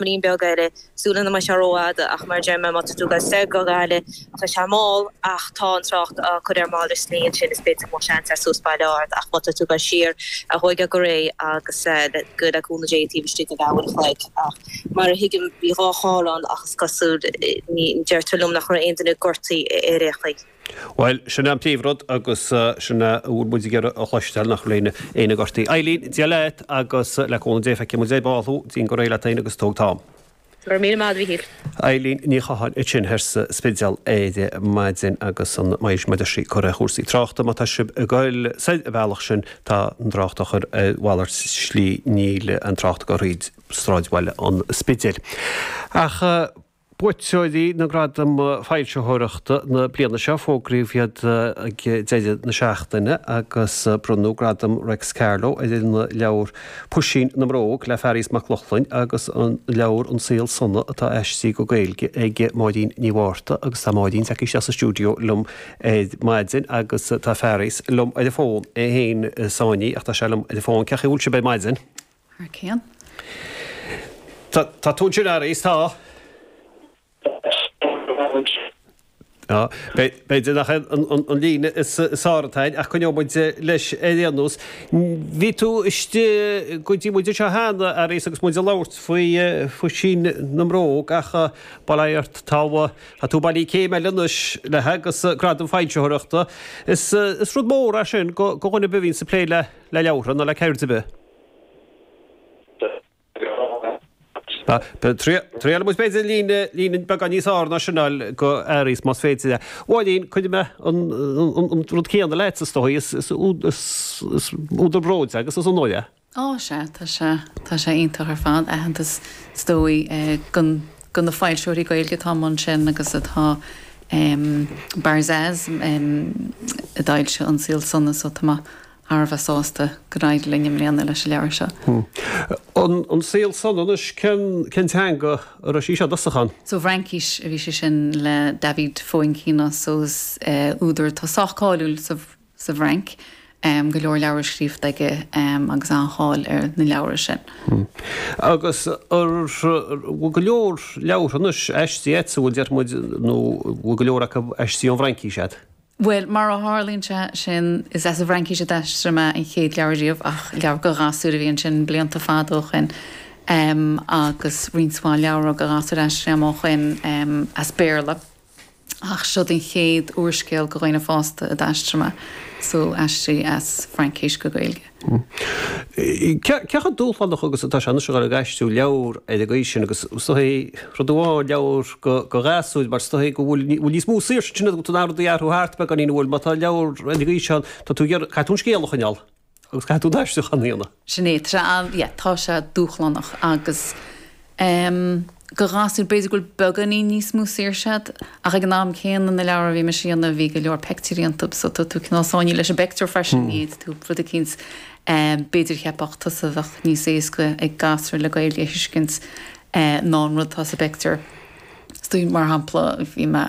Píosa beag eile, sula mbeidh sé ró-fhada, ach mar a deir mé, má tá tú ag dul soir go Gaillimh, tá sé mall, ach tá an trácht á cur ar mhalairt slí ansin, is b'fhéidir go mbeadh seans air suas Baile Ard, ach má tá tú ag dul siar, tóig é go réidh agus le cúnamh Dé taobh istigh de leath uair a chloig, ach mar a thuigim, bhí dhá charr ann agus is cosúil, deirtear liom, nach raibh aon duine gortaithe ar aon chaoi. Bhuel, sin é an príomhrud agus sin é a bhfuil muid ag iarraidh a chloisteáil, nach bhfuil éinne, éinne gortaithe. Eilín, Dia leat agus le cúnamh Dé feicfidh muid ar. ball thú, déan go réidh leat féin agus tóg t'am. Go raibh míle maith, a Mhíchíl. Eilín Ní Chatháin ansin thoir sa Spidéal ar maidin agus an méid a bhí sí a cur ar chúrsaí tráchta. Má tá sibh ag goil soir an bealach sin tá an trácht á chur ar mhalairt slí, níl an trácht ag goil thríd sráidbhaile an Spidéil. Ach. Buaiteoirí na nGradam Foilsitheoireachta na bliana seo, fógraíodh iad ag deireadh na seachtaine agus bronnadh Gradam Réics Carló ar an leabhar Puisín na mBróg le Fearghas Mac Lochlainn agus an leabhar An Saol Sona atá aistrithe go Gaeilge ag Máirín Ní Mhárta agus tá Máirín tagtha isteach sa stiúideo liom ar maidin agus tá Fearghas liom ar an bhfón, é fhéin sáinnithe ach tá sé liom ar an bhfón. Cé chaoi a bhfuil sibh ar maidin? Thar cionn. Tá, tá tú ansin a Fhearghais, tá. Tá, b'fhéidir nach é an líne is fearr atá air, ach coinneoidh muid leis ar aon nós. Bhí tú istigh go dtí muid anseo cheana a Fhearghais agus muid ag labhairt faoi Phuisín na mBróg ach bail ó Dhia ort, tá tú bailithe céim eile anois leis agus gradam foilsitheoireachta. Is rud mór é sin go dhuine ar bith a bhíonns ag plé le leabhartha nó le ceird ar bith. Triail muid b'fhéidir líne beagán níos fhearr ná sin go Fhearghas más féidir é. A Mháirín, cuirfidh mé an rud céanna ort is dóigh, is údar bróid é agus is onóir é. Ó sea, tá sé, tá sé iontach ar fad, aitheantas is dóigh go na foilsitheoirí Gaeilge atá i mbun sin agus atá Barzaz a d'fhoilsigh An Saol Sona so tá mé thar a bheith sásta gur éirigh linn i mbliana leis an leabhar seo. An saol sona anois, cén teanga a raibh sí seo i dtosach ann? Sa bhFraincís a bhí sé sin le David Foenkinos, údar atá sách cáiliúil sa bhFrainc, go leor leabhar scríofa aige agus an-cháil ar na leabhra sin. Agus an bhfuil go leor leabhartha anois, aistrithe agat, a bhfuil, déarfaimid, nó an bhfuil go leor acu aistrithe ón bhFraincís agat? Bhuel, mar a tharlaíonn sé sin, is as an bhFraincís a d'aistrigh mé an chéad leabhar riamh, ach leabhar go gasúir a bhí ansin blianta fada ó shoin, agus roinnt mhaith leabhra go gasúir a d'aistrigh mé ó shoin as Béarla. Ach seo é an chéad úrscéal go dhaoine fásta a d'aistrigh mé, so aistrithe as an bhFraincis go Gaeilge. Cé chomh dúshlánach agus atá sé anois a dhul ag aistriú leabhar ar an gcaoi sin agus is dóigh rud amháin, leabhar, go ghasúir mar is dóigh go bhfuil níos mó saoirse ansin agat chun rudaí a athrú thart beagáinín a bhfuil má tá leabhar ar an gcaoi seo tá tú ag iarraidh, caithfidh tú an scéal a choinneáil agus caithfidh tú an t-aistriúchán a dhéanamh. Sin é, tá sé, yeah, tá sé dúshlánach agus. Em. go ghasúir, b'fhéidir go bhfuil beagáinín níos mó saoirse agat ach ag an am céanna na leabhra a bhí mise a dhéanamh bhí go leor peictiúirí iontub so tá tú cineál sáinnithe leis an bpeictiúr freisin, ní fhéadfadh tú rud eicínt em. b'fhéidir cheapfadh tusa bheadh níos éasca ag gasúr le Gaeilge a thuiscint eh. ná an rud atá sa bpeictiúr. So mar shampla bhí mé.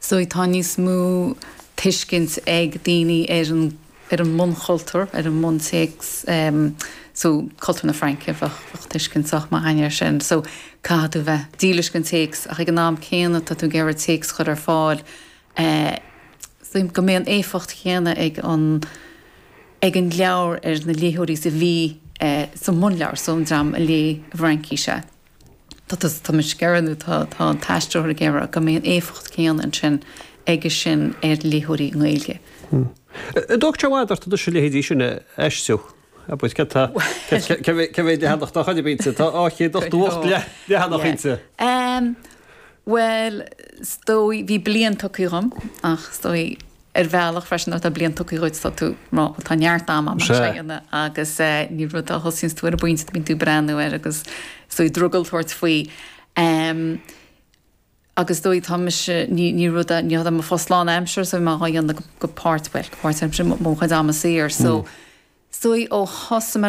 So tá níos mó tuiscint ag daoine ar an ar an mbunchultúr, ar an mbuntéacs em so cultúr na Fraince bheadh bheadh tuiscint sách maith againn air sin. So caithfidh tú bheith dílis gon téacs ach ag an am céanna tá tú ag iarraidh téacs a chur ar fáil eh so go mbeidh an éifeacht chéanna ag an ag an leabhar ar na léitheoirí is a bhí eh sa mbunleabhar so an dream a léigh i bhFraincis é. Tá tá tá muid ag iarraidh nó tá tá an t-aistritheoir ag iarraidh go mbeidh an éifeacht céanna ansin aige sin ar léitheoirí na Gaeilge. An dtóigeann sé i bhfad ort anois a leithéidí sin a aistriú? Ar bith cad tá cad cé mhéad cé mhéad leathanach dá chaidreamh inti? Tá dhá chéad ochtó hocht leathanach Yeah. inti. Em, bhuel, 's dóigh, bhí bliain tugtha dhom ach 's dóigh ar bhealach freisin nuair atá bliain tugtha dhuit tá tú ag rá bhuel tá neart ama ann Sea. lena dhéanamh agus eh ní rud a thosaíonns tú ar an bpointe bíonn tú ag breathnú air agus is dóigh drogall tabhairt faoi em agus is dóigh tá mise ní ní rud a ní hé mo phost lán aimsir so bím dhá dhéanamh go páirt bhuel go páirt aimsir mo chuid ama saor so is dóigh ó thosaigh mé ar